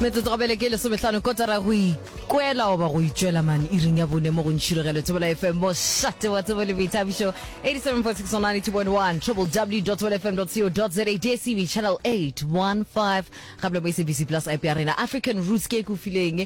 metsotso go bele ke lesomehlano kotara go ikwela goba go itšwela mane iring ya bone mo go ntšhirogelo tsebola fm mošate wa tsebo le boithabišo 87.692.1 www fm co za dstv channel 815 gape le mo sabc plus ip ya rena african roots ke e kofileng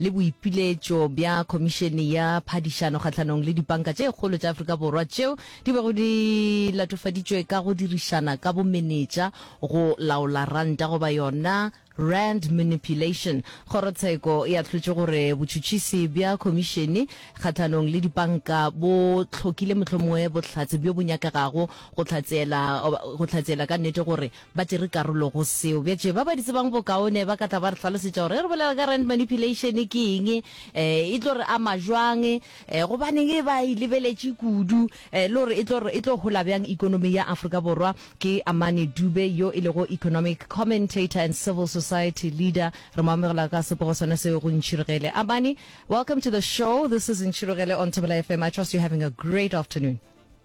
le boipiletšo bja Khomišene ya Phadišano kgahlanong le dipanka tše kgolo tša Afrika Borwa tšeo di bego di latofaditšwe ka go dirišana ka bomenetša go laola ranta goba yona rand manipulation. Kgorotsheko e ahlotše gore botšhutšhisi bja Khomišene kgahlanong le dipanka bo hlokile mohlomongwe bohlatse bjo bo nyakegago go hlatseela go hlatseela ka nnete gore ba tšere karolo go seo. Bjatše, ba ba di tsebang bokaone ba ka tla ba re hlalosetša gore ge re bolela ka rand manipulation ke eng, um e tlo re ama jwang, um gobaneng e ba e lebeletše kudu, um le gore e tlo re e tlo hola bjang ekonomi ya Afrika Borwa. Ke Amani Dube yo e lego economic commentator and civil society leader. Re mo amogela ka sepogo sona seo go Ntšhirogele. Amani, welcome to the show. This is Ntšhirogele on Thobela FM. I trust you're having a great afternoon.